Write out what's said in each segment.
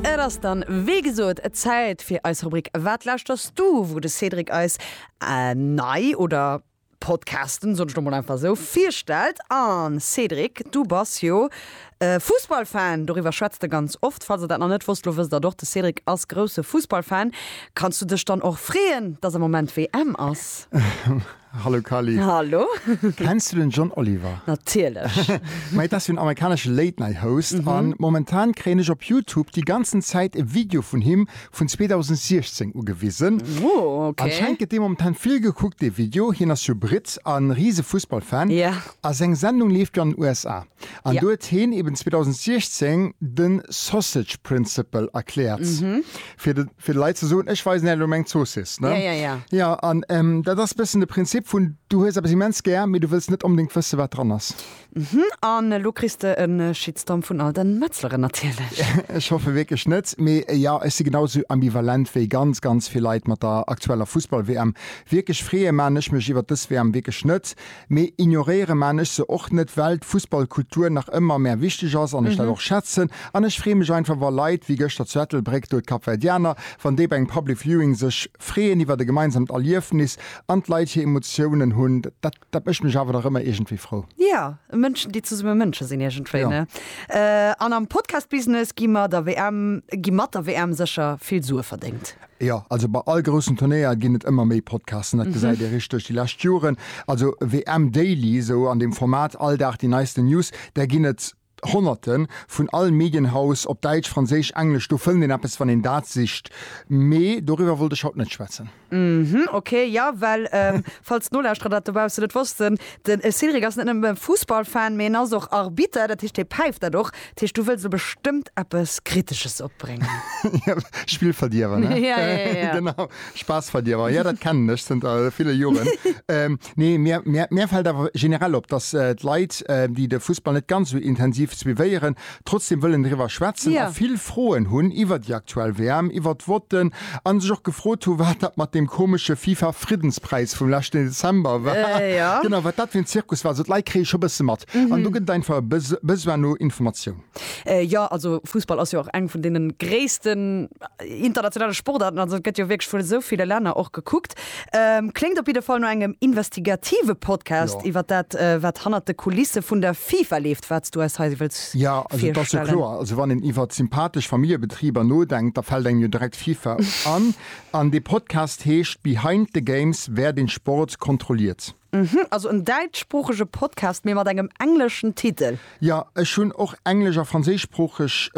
Et ass dann, wéi gesot, Zäit fir eis Rubrik Wat lauschterst du? wou de Cédric eis nei oder Podcasten, soen ech lo mol einfach esou, virstellt. An Cédric, du bass jo e Fussballfan, doriwwer schwätzt e ganz oft. Falls der dat nach net wosst, lo wësst der et och, de Cédric ass grousse Fussballfan. Kanns du dech dann och freeën, dass am Moment WM ass? Hallo Kali. Hallo. Kenns du den John Oliver? Natierlech. Mei dat ass jo en amerikanesche Late Night Host an momentan kréien ech op Youtube déi ganzen Zäit e Video vun him vun 2016 ugewisen. Oh ok. Anscheinend gëtt dee momentan vill gekuckt dee Video, hien ass jo Britt an Riese Fussballfan. Yeah. A seng Sendung leeft jo an den USA. An do huet heen eben 2016 den Sausage Principle erkläert, fir de fir de Leit ze soen, ech weisen är elo meng Zoossiss, ne? Ja, ja, ja. Ja, an dat ass e bëssen de Prinzip vun, du hues eppes immens gär, mee du wëlls net onbedéngt wëssen, wat dran ass. Mhm, an elo kriss de e Shitstorm vun all den Metzleren natierlech. Ech hoffe wierklech net, mee jo, ech si genau esou ambivalent wéi ganz, ganz vill Leit mat der aktueller Fussball-WM. Wierklech freeë man ech mech iwwert dës WM wierklech net, Mee ignoréiere maan ech se och net, well d'Fussballkultur nach ëmmer mär wichteg ass an ech dat och schätzen. An ech free mech einfach wa Leit wéi gëschter zu Ettelbréck do, d'Kapverdianer, wann déi bei engem Public Viewing sech freeën iwwert e gemeinsamt Erliefnis an d'Leit hir Emotiounen hunn. Dat dat mécht mech awer dach ëmmer iergendwéi frou. Jo, Mënschen déi zesumme Mënsche sinn iergendwéi, ne? An am Podcast-Business gi mer der WM, gi mat der WM sécher vill Sue verdéngt. Jo, also bei all groussen Turnéier ginn et ëmmer méi Podcasten, dat gesäit ee richteg duerch déi lescht Joren. Also WM Daily, esou an deem Format, all Dag déi neisten News, där ginn et Honnerten, vun all Medienhaus, op Däitsch, Franséisch, Englesch, do fënnt een eppes, wann een dat sicht. Mee doriwwer wollt ech haut net schwätzen. Uhmm, ok. Jo, well falls d'Nolauschterer dat dobaussen net wossten, de Cédric ass net nëmme Fussballfan, mee en ass och Arbitter, dat heescht hie päift dat och Dat heescht, du wëlls elo bestëmmt eppes Kritesches opbréngen? Spillverdierwer, ne? Ja, ja, ja, ja. Genau, Spaassverdierwer. Ja, dat kennen ech zënter ville Joren. Nee, mir, mir, mir fält awer generell op, dass d'Leit, déi de Fussball net ganz esou intensiv suivéieren, trotzdem wëllen driwwer schwätzen a vill Froen hunn iwwer déi aktuell WM, iwwer d'Votten, An sech och gefrot hu wat dat mat deem komesche FIFA Friddenspräis vum leschten Dezember war. Genau, wat dat fir en Zirkus war. Also d'Leit kréie scho bësse mat. An do gëtt et einfach e Besoin no Informatioun. Jo, also Fussball ass jo och eng vun deene gréissten internationale Sportaarten. Also et gëtt jo wierklech vun esou ville Länner och gekuckt. Kléngt op jidde Fall no engem investigative Podcast iwwer dat, wat hannert de Kulisse vun der FIFA leeft, wat s du eis hei wëlls virstellen. Jo, also et ass jo kloer, also wann een iwwer sympathesch Familljebetriber nodenkt, da fält engem jo direkt d'FIFA an. An dee Podcast heescht Behind the Games, Wär deen Sport kontrolliert? Mhm, also en däitschsproochege Podcast, mee mat engem engleschen Titel? Jo, ech hunn och englesch a franséischsproocheg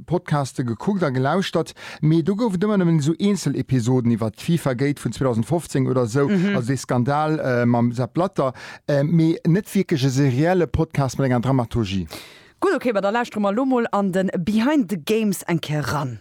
Podcaste gekuckt a gelauschtert, mee do gouf et ëmmer nëmmen esou eenzel Episoden iwwert d'Fifa-Gate vun 2015 oder esou, also dee Skandal mam Sepp Blatter, mee net wierklech e serielle Podcast mat enger Dramaturgie. Gutt, ok, ma da lauschtere mer elo mol an de Behind the Games eng Kéier eran.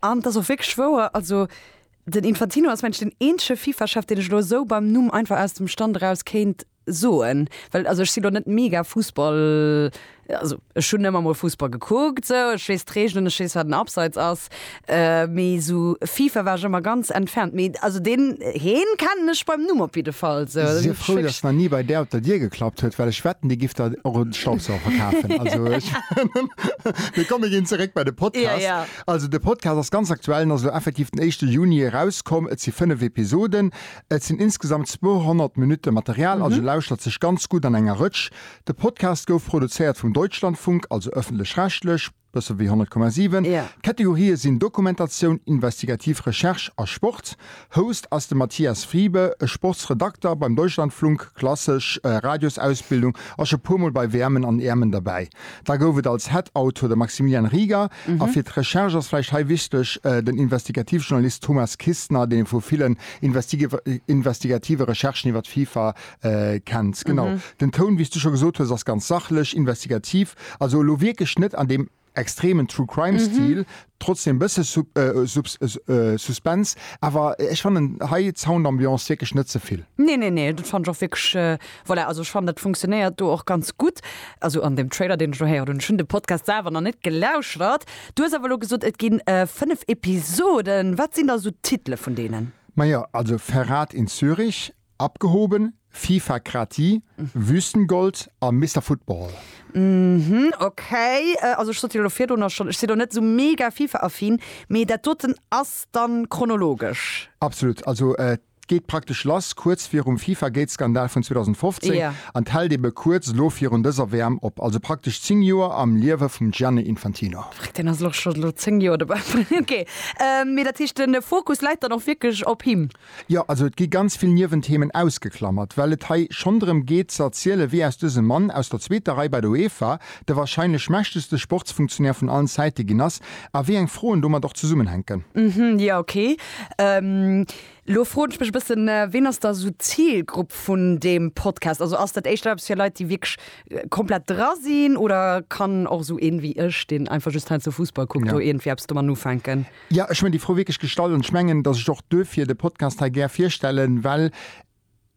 An et ass och wierklech wouer, also den Infantino ass mengen ech den eenzege Fifa-Chef, deen ech elo esou beim Numm einfach aus dem Stand eraus kéint soen, well also ech sinn elo net mega Fussball, also ech hunn ëmmer mol Fussball gekuckt esou, ech weess d'Reegelen, ech weess wat en Abseits ass, mee esou Fifa war ech ëmmer ganz entfernt, mee also deen heen kennen ech beim Numm op jidde Fall esou. Sief frou, datt nach ni bei där op der Dier geklappt huet, well ech wetten dir gifft der och e Staubsauger kafen. Also ech, mee komm mir ginn zeréck bei de Podcast. Also de Podcast ass ganz aktuell, en ass elo effektiv den éischte Juni erauskomm. Et si fënnef Episoden, et sinn insgesamt 200 Minutte Material, also lauschtert sech ganz gutt an enger Rëtsch. De Podcast gouf produzéiert vum Deutschlandfunk, also ëffentlech-rechtlech, bësse wéi 100,7. D'Kategorië sinn Dokumentatioun, investigativ Recherche a Sport. Host ass de Matthias Friebe, e Sportsredakter beim Deutschlandflunk, klassesch Radiosausbildung, ass scho puer mol bei WMen an EMen derbäi. Da gouf et als Head Autor de Maximilian Rieger a fir d'Recherche ass vläicht hei wichteg den Investigativjournalist Thomas Kistner, deen ee vu villen investigative Recherchen iwwer d'FIFA kennt. Genau, den Toun, wéi s du scho gesot hues, ass ganz sachlech, investigativ, also elo wierklech net an deem. extremen True Crime Stil, trotzdem bësse Suspense, awer ech fannen hei d'Soundambiance wierklech net zevill. Nee, nee, nee, dat fand ech och wierklech, voilà, also ech fannen dat funktionéiert do och ganz gutt, also an deem Trailer deen ech elo héieren hunn, ech hunn de Podcast selwer nach net gelauschert. Du hues awer elo gesot et ginn 5 Episoden, wat sinn da esou d'Titele vun deenen? Majo, also Verrat in Zürich. Abgehoben, FIFA Krati, Wüstengold a Mister Football. Mhm, okay. Also ech sot dir elo virdrun och schonn, ech sinn och net esou mega FIFA-affin, mee dat doten ass dann chronologesch? Absolut. Also et geet praktesch lass kuerz virum Fifa-Gate-Skandal vun 2015 Jo. an et hält ebe kuerz elo virun dëser WM op. Also praktesch 10 Joer am Liewe vum Gianni Infantino. Fréck, deen ass elo scho elo 10 Joer dobäi. Okay, mee dat heescht de Fokus läit dann och wierklech op him? Jo, also et gi ganz vill Niewenthemen ausgeklamert, well et hei schonn drëm geet ze erzielen, wéi aus dësem Mann aus der zweeter Rei bei der UEFA de warscheinlech mächtegste Sportsfunktionär vun allen Zäite ginn ass a wéi eng Froen domat och zesummenhänken. Hm, jo, ok. Elo froen ech mech e bëssen, ween ass da esou d'Zilgrupp vun deem Podcast? Also ass dat éischter eppes fir Leit, déi wierklech komplett dra sinn, oder kann och esou een ewéi ech, deen einfach just heiansdo Fussball kuckt, do iergendwéi eppes doman ufänken? Jo, ech hunn déi Fro wierklech gestallt an ech mengen, dass ech och duerfir de Podcast hei gär virstellen, well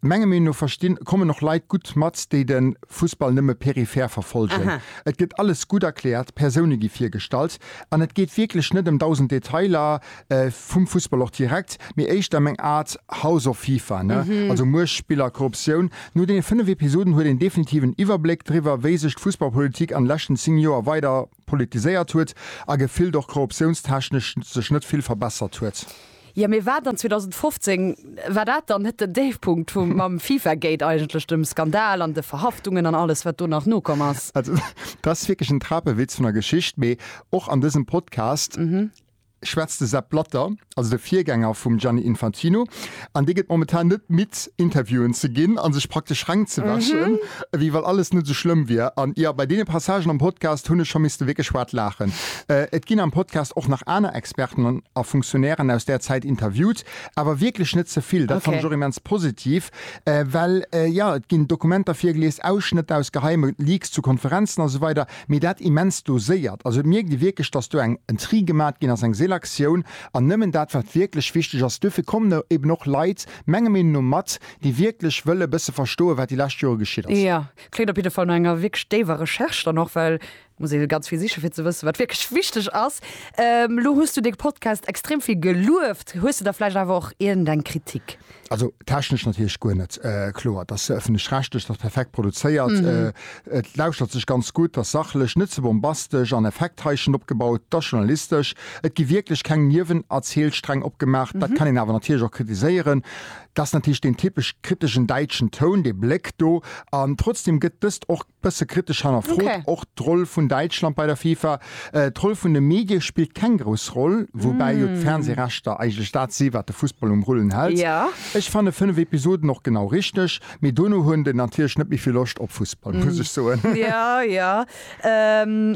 menger Meenung no verstinn, kommen och Leit gutt mat, déi de Fussball nëmme peripher verfolgen. Et gëtt alles gutt erkläert, d'Persoune gi virgestallt an et geet wierklech net ëm dausend Detailer vum Fussball och direkt, mee éischter ëm eng Aart House of FIFA, ne? Also Muecht, Spiller, Korruptioun. No deene fënnef Episoden huet een definitiv en Iwwerbléck driwwer, wéi sech d'Fussballpolitik an de leschten zéng Joer weider politiséiert huet a gefillt och korruptiounstechnesch sech net vill verbessert huet. Jo, mee war dann 2015, war dat dann net den Déifpunkt vum mam Fifa-Gate eigentlech, dem Skandal an de Verhaftungen an alles wat do nach nokomm ass? Also, dat ass wierklech en Trapewitz vun der Geschicht, mee och an dësem Podcast. schwätzt de Sepp Blatter, also de Virgänger vum Gianni Infantino, an dee gëtt momentan net midd, Interviewen ze ginn a sech praktesch reng ze wäschen, ewéi wa alles net esou schlëmm wier. An jo, bei deene Passagen am Podcast hunn ech scho misste wierklech haart laachen. Et ginn am Podcast och nach aner Experten a Funktionären aus där Zäit interviewt, awer wierklech net ze vill. Dat fannen ech och immens positiv, well jo, et ginn Dokumenter virgelies, Ausschnëtter aus geheime Leaks zu Konferenzen a sou weider. mee dat immens doséiert. Also et mierkt ee wierklech, dass do eng en Tri gemat ginn ass, eng Selektioun an nëmmen dat wat wierklech wichteg ass. Duerfir kommen do eben och Leit menger Meenung no mat, déi wierklech wëlle e bësse verstoen, wat déi lescht Jore geschitt ass. Jo, kléngt op jidde Fall no enger wierklech déiwer Recherche dann och, well et muss ee ganz vill sichen, fir ze wëssen, wat wierklech wichteg ass. Elo hues du de Podcast extrem vill gelueft. Hues du da vläicht awer och iergendeng Kritik? Also technesch natierlech guer net kloer. Et ass ëffentlech-rechtlech, et ass perfekt produzéiert, et lauschtert sech ganz gutt, et ass sachlech, net ze bombastesch an Effekthaischen opgebaut, et ass journalistesch, et gi wierklech keng Niewenerzielstreng opgemaach. Dat kann een awer natierlech och kritiséieren, dat ass natierlech deen typesch kriteschen däitschen Toun, dee Bléck do. An trotzdeem gëtt dëst och Bësse kritesch hannerfrot och d'Roll vun Däitschland bei der FIFA. D'Roll vun de Medie spillt keng grouss Roll, woubäi jo d'Fernsehrechter eigentlech dat si wat de Fussball um Rullen hält. Ech fanne 5 Episoden och genau richteg, mee dono hunn de natierlech net méi vill Loscht op Fussball, muss ech soen. Jo, jo.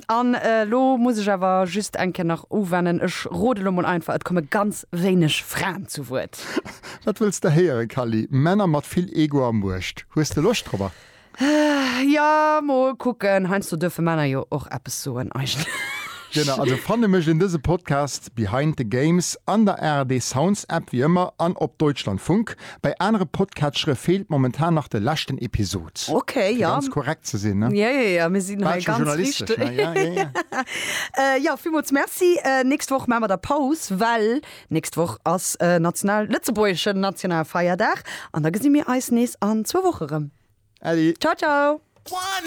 An elo muss ech awer just eng Kéier nach uwennen, ech rode lo mol einfach, et komme ganz wéineg Fraen zu Wuert. Wat wëlls de héieren, Kally? Männer mat vill Ego a Muecht. Hues de Loscht drop? Jo, mol kucken. Heiansdo duerfe Männer jo och eppes soen, eigentlech. Genau, also fanne mécht een dëse Podcast Behind the Games an der ARD Sounds App, wéi ëmmer, an op Deutschlandfunk. Bei anere Podcatchere feelt momentan nach de leschten Episod. Ok, fir jo. Ganz korrekt ze sinn, ne? Jo, jo, jo, mir sinn hei ganz richteg. Jo, jo, jo. Jo, villmools merci. Nächst Woch maache mer da Paus, well Nächst Woch ass e national lëtzebuergeschen Nationalfeierdag an da gesi mir eis nees an zwou Woche rëm. Äddi! Ciao ciao!